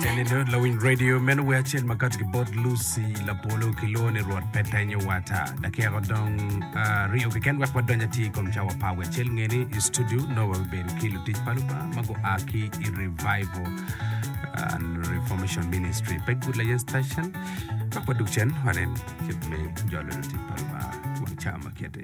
Jalendo lawiny radio meno wer acel ma kati ki bot Lucy Lapolo ki lwongo ni Rwot pe tenyo wata. Dakika dong aryo keken wek wadony atir i kom cawa pa wer acel ngeni i studio nongo wabibedo ki lutic pa Lubanga ma gua ki i Revival uh, Reformation Ministry pe Good Layan Station. Wek wadug cen wanen kit me jolo lutic pa Lubanga wang ca ma kiti.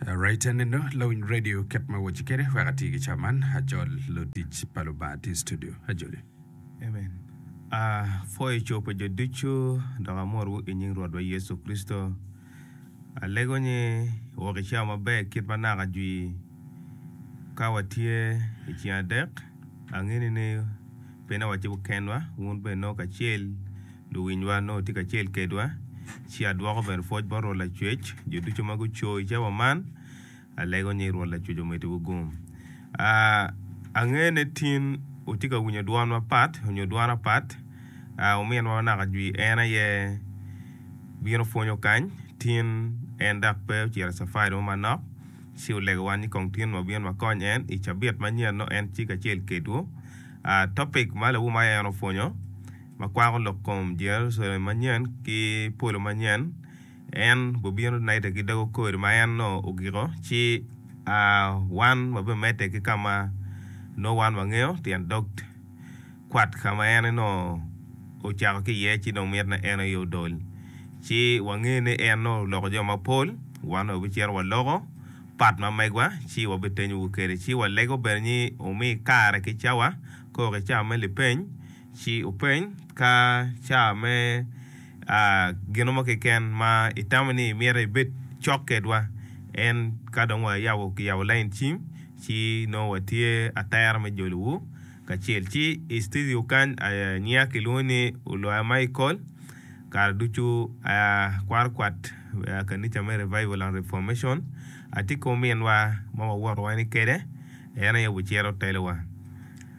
Raite nino lawiny radio kit ma awoci kede wek ati ki ca man acol lutic pa Lubanga ati studio ajoli. Amen. A pwoyo co pa jo ducu dok amotwu i nying Rwotwa Yecu Kricito. Alego ni wok i cawa maber kit ma naka jwi ka watye i cing adek. Angini ni pe na watye kenwa, wun bene nongo kacel. Luwinywa onongo tye kacel kedwa. Ci adwoko bene pwoc bot Rwot Lacwec, jo ducu ma guco i cawa man. Alego nying Rwot Lacwec omeddiwu gum. Angene tin wutye ka winyo dwon mapat nyo dwon apat. Ominwa ma naka jwi en aye bino pwonyo kany. Tin en dok pe ocito i cafari mo manok, ci olegowa ni kong tin wabin wakony en. I cabit manyen nongo en tye kacel kedwu. Topic ma lawum aye en opwonyo. ma kwako lok kom Jerucalem manyen ki polo manyen, en bobino naitte ki dogo kori ma en nongo ogiko, ci wan wabimedde ki ka ma nongo wan wangeyo, tyen dog kwat ka ma en nongo ocako ki iye ci dong mitine en aye odol. Ci wange ni en nongo oloko jo mapol, wan dong wabicito waloko pat ma megwa ci wabitenyowu kwede, ci walego bene ni wumi kare ki cawa, koko ki cawa me lipeny. Ci openy ka ca me gino mo keken ma itamo ni imito ibed cok kedwa. En ka dong wayabo kiyabo lain cim ci nongo watye atera me jolowu kacel. Ci i citidio kany nyinga kilwongo ni Oloya Michael, kare ducu akwaro kwat kanica me Revival and Reformation. Atye ki ominwa ma wawoto wani kwede, en aye obicito telowa.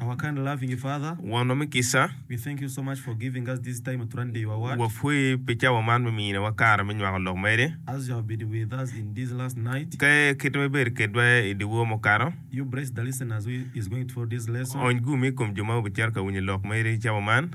Our kind and loving Father, Wonwa me kica, we thank you so much for giving us this time to render your word. Wapwoyi pi cawa man me miniwa kare me nywako lok meri. As you have been with us in this last night, Ka kit ma ibedo kedwa i dyewor mukato, you bless the listeners who is going through this lesson. ony gumi i kom jo ma obicito ka winyo lok meri i cawa man.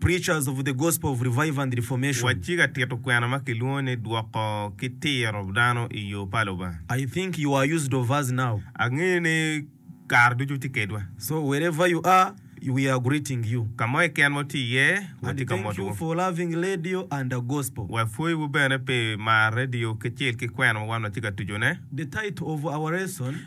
Preachers of the Gospel of Revival and Reformation. Wacci ka tito kwena ma kilwongo ni Dwoko ki Tiro Dano i Yo pa Lubanga. I think you are used of us now. Angeyo ni kare ducu itye kedwa. So wherever you are, we are greeting you. Ka mo keken ma wutye iye, watye ka motowu. And thank you for loving radio and the Gospel. Wapwoyiwu bene pi maro radio kacel ki kwena ma wan watye ka tucone. The title of our lesson.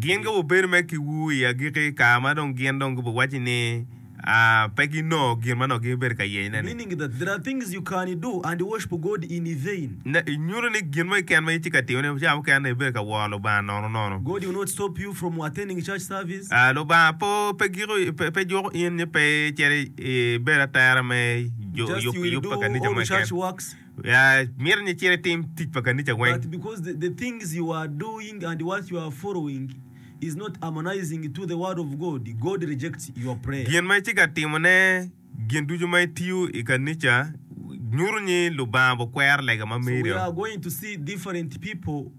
Gin ka wubedo me kiwu i agikki ka ma dong gin dong gubiwacci ni pe ginongo gin ma nongo gibibedo ka yeyone-ni, nyuto ni gin mo keken ma itye ka timone pi caro mukene ibedo ka woro Lubanga nono nono. Lubanga pe juko in ni pe icito ibedo atera me yub pa kanisa mo keken. Myero ni icit itim tic pa kanica weng. Gin ma itye ka timone, gin ducu ma itiyo i kanica, nyuto ni Lubanga okwero lega ma meri-o.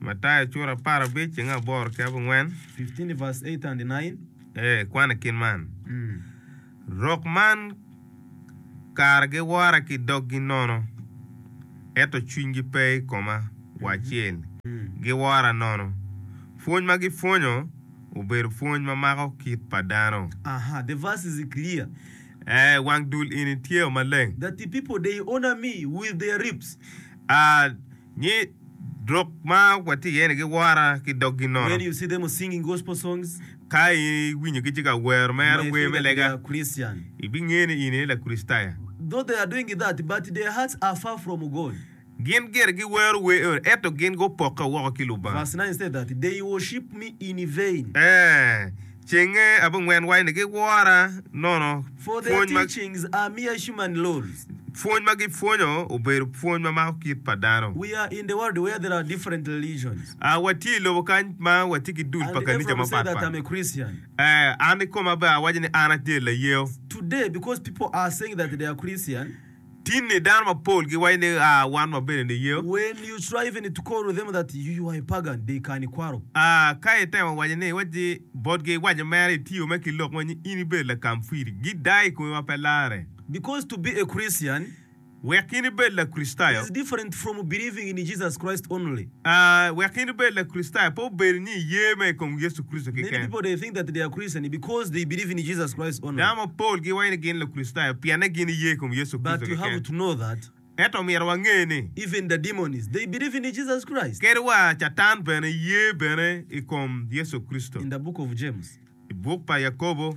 Mataya cura apar abic cinge aboro ki abongwen. 15 verse 8 and 9. Ee, kwan i kin man. Mm. Rok man kara giwora ki doggi nono, ento cwinygi pe i koma wa acel. Mm. Giwora nono. Pwony ma gipwonyo obedo pwony ma mako kit pa dano. Aha, the verse is clear. Ee, wang dul ini tye o maleng. That the people, they honor me with their lips. Ah, Nyi lok ma watye iye-ni giwora ki doggi nono. Ka iwinyogi tye ka wero mere wer me lega, ibingeyo ni in aye Lakricitayo. Gin gire giwero wer eno, ento gin gupokke woko ki Lubanga. Ee, Cenge abongwen wa ni giwora nono pwony ma pwony ma gipwonyo obedo pwony ma mako kit pa dano. A Watye i lobo kany ma watye ki dul pa kanica mapat pat. A An ikoma bene awaco ni an atye layeyo. Tinni dano mapol giwaco ni, A, wan wabedo niye. When you try even to call them that you you are a pagan, they can ikwaro. A, ka itemo waco ni iwacci botgi iwaco mere itiyo mere ki lok mo ni in ibedo Lakamfiri, gidayo i komi ma pe larre. Because to be a Christian. Wek in ibed Lakricitayo. Is different from believing in Jesus Christ only. Wek in ibed Lakricitayo, pe obedo ni iye mere i kom Yecu Kricito keken. Dano mapol giwaco ni gin Lukricitayo pienne gin iye i kom Yecu Kricito keken. Ento omyero wange ni, kadi wa Catan bene ye bene i kom Yecu Kricito. I buk pa Yakobo.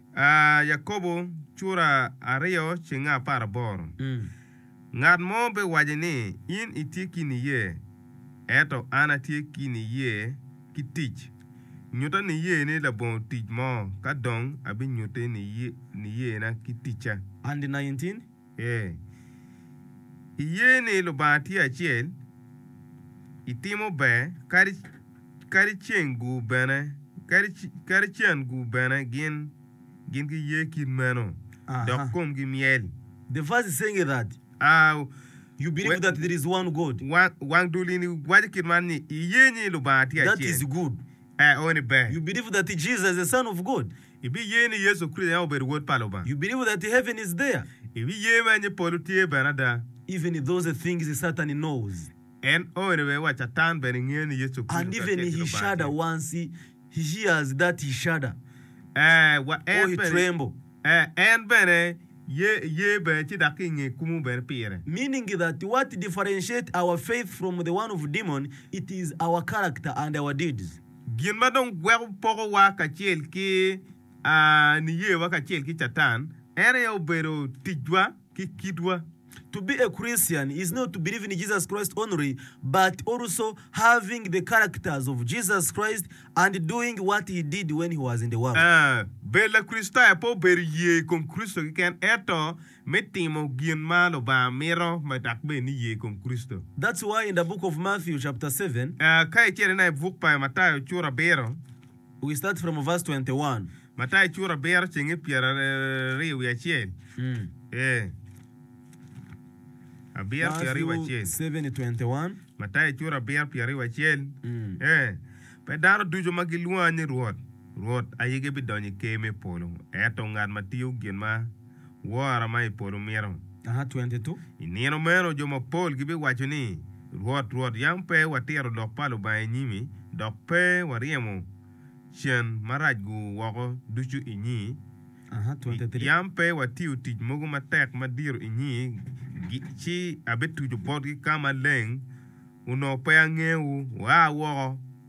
A Yakobo cura aryo cenge apar aboro. Ngat mo pe waci ni in itye ki niye, ento an atye ki niye ki tic. Nyuta niye ni labongo tic mo, ka dong abinyutti niyena ki ticca. Andi 19. Iye ni Lubanga tye acel, itimo ber kadi cen gu bene, kadi cen gu bene gin giye kit meno, dok komgi myel. Wang dulini waco kit man ni, Iye ni Lubanga tye acel, ee, eni ber. Ibiye ni Yecu Kricito en aye obedo Wod pa Lubanga? You believe that heaven is there? Ibiye bene ni polo tye bene ada? Even if those things Satan knows. En owene bene wa Catan bene ngeyo ni Yecu Kricito And kacel even ki he Lubanga shudder tye. once he hears that he shudder Ee, wa or en he bene. tremble. Ee, en bene ye, ye bene ci dok ki inge kumo bene pire. Meaning that what differentiate our faith from the one of demon it is our character and our deeds. Gin ma dong gweko pokowa kacel ki niyewa kacel ki Catan en aye obedo ticwa ki kitwa. To be a Christian is not to believe in Jesus Christ only but also having the characters of Jesus Christ and doing what he did when he was in the world. Bedo Lakricitayo pe obedo ye i kom Kricito keken ento me timo gin ma Lubanga mito ma dok bed ni ye ikom Kricito. That's why in the book of Matthew chapter seven. Ka icito ina i buk pa Matayo cura abiro. We start from verse twenty one. Matayo cura abiro cenge pyera ryo wiye acel ee abiro pyera ryo wiye acel. Matthew seven twenty one. Matayo cura abiro pyera ryo wiye acel ee pe dano ducu ma gilwonga ni Rwot, Rwot ayege bidonyo i ker me polo, eto ngat ma tiyo gin ma. wora ma i polo mito. I nino meno jo mapol gibiwaco ni, 'Rwot, Rwot, yam pe watiro lok pa Lubanga i nyimi, dok pe waryemo cen marac-gu woko ducu i nyi, yam pe watiyo tic mogo matek madiro i nyi, ci abituco botgi ka maleng, onongo pe angewu? Wua woko!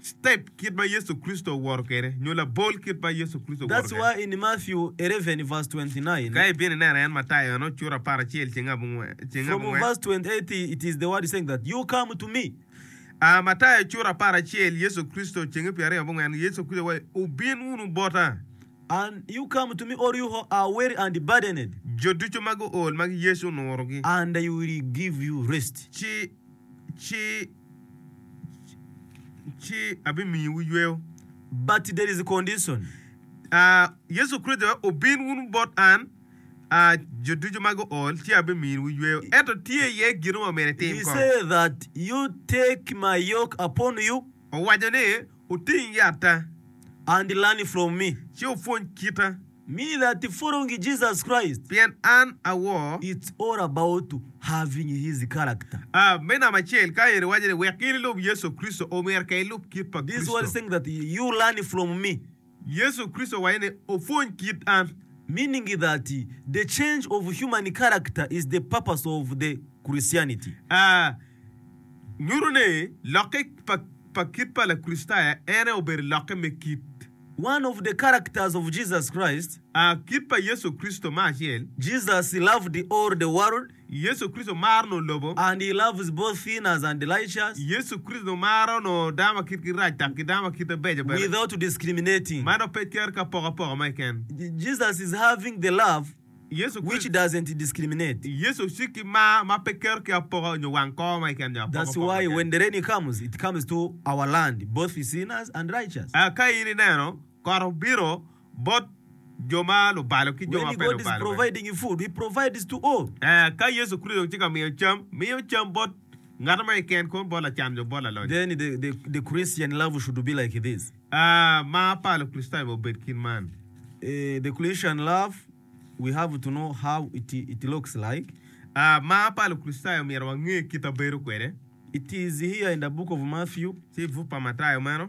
step kit ma Yecu Kricito owoto kwede, nyo labol kit ma Yecu Kricito owoto kwede. Ka ibino ineno en, Matayo eno, cura apar acel ceng abongwen. A Matayo cura apar acel, Yecu Kricito cenge pyeraryo abongwen, Yecu Kricito waco, Wubin wunu bota. Jo ducu ma guol ma Yecu onurogi. Ci. ci abimiyowu yweyo. But there is a condition. Yecu Kricito aye obin wunu bot an, jo ducu ma guol, ci abimiyowu yweyo. Ento tye iye gino ma myero itim kong. He said that you take my yoke upon you. Owaco ni, Oting yatta, andilani from me, ci opwony kita. Mi lati forongi Jesus Christ. Pien an awor. It's all about having his character. A. Me namba acel, ka en iwaco ni wek in ilub Yecu Kricito, omyero ka ilub kit pa Kricito. This one saying that you learn from me. Yecu Kricito waye ne opwony kit an. Meaning that the change of human character is the purpose of the Christianity. A. Nyuto ne lokke pa pa kit pa Lakricitayo ene obedo lokke me kit. One of the characters of Jesus Christ. A. Kit pa Yecu Kricito me acel. Jesus loved all the world Yecu Kricito maro nongo lobo. And he loves both sinners and the righteous. Yecu Kricito maro nongo dano ma kitgi rac dok ki dano ma kite beco bene. Without discriminating. Man ope ker ki apokapoka ma keken. Jesus is having the love Yecu which Kricito. doesn't discriminate. Yecu ocik ki mar ma pe kero ki apoka nyo wang kor ma keken nyo apokapoka That's ma why keken. when the rain comes, it comes to our land, both sinners and righteous. Eka ka in ineno kot obino. bot jo ma lubalo ki jo ma pe lubalo bene. Ka Yecu Kricito dong tye ka miyo cam, miyo cam bot ngat ma keken kong, bot lacan nyo bot lalonyo. Mar pa Lukricitayo ma obed kit man. Mar pa Lukricitayo omyero wange kit ma bedo kwede. Tye i buk pa Matayo meno.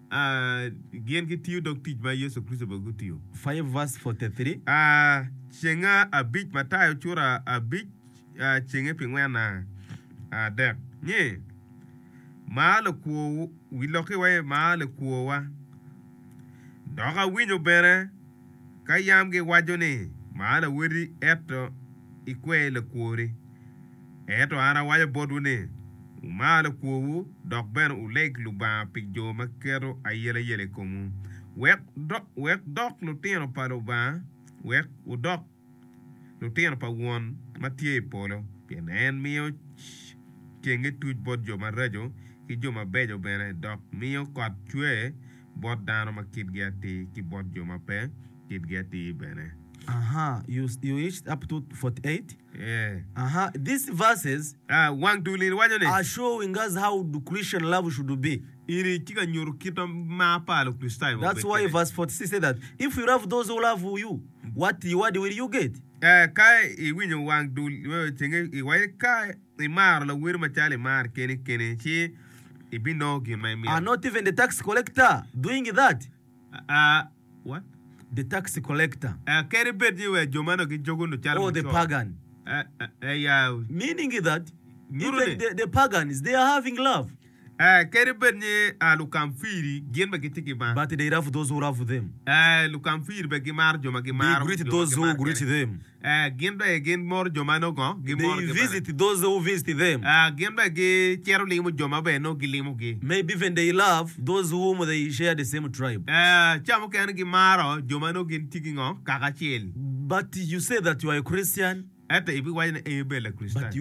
Gin gitiyo dog tic ma Yecu Kricito bene otiyo. 5:43. Cenge abic Matayo cura abic cenge pi ngwen adek ni, Mar lakwo wi lokiwa, mar lakwowa. Dok awinyo bene Ka yam giwaco ni, 'Man awoti, ento ikwe lakwori. Ento an awaco botwu ni, Wumar lakwowu, dok bene wuleg Lubanga pi jo ma keto ayelayela i komwu, wek wudok lutino pa Lubanga, wek wudok lutino pa Won ma tye i polo, pien en miyo cenge tuc bot jo maraco ki jo mabeco bene, dok miyo kot cwer bot dano ma kitgi atir ki bot jo ma pe kitgi atir bene. Eni tye ka nyuto kit mar pa Lukricitayo ma obedo kwede. Wat i wadi wele yoget. Ka iwinyo wang dul iweyo cenge i wadi. Ka imaro lawer macalo imaro keni keni ci ibinongo gin ma imito. Are not even the tax collector doing that? What? The tax collector. Kadi bed ni wa jo man dong gijogo nyo calo mucoro. Or the pagan. Meaning that even the pagans they are having love. Kadi bed ni lukamfiri gin bene gitye ki mar, lukamfiri bene gimaro jo ma gimaro jo ma gimaro kwede, gin bene gimoro jo ma nongo gimoro kwede, gin bene gicito limo jo ma nongo gilimogi, ca mukene gimaro jo ma nongo gitye ki kaka acel. Ento ibiwaco ni in ibedo Lakricitayo.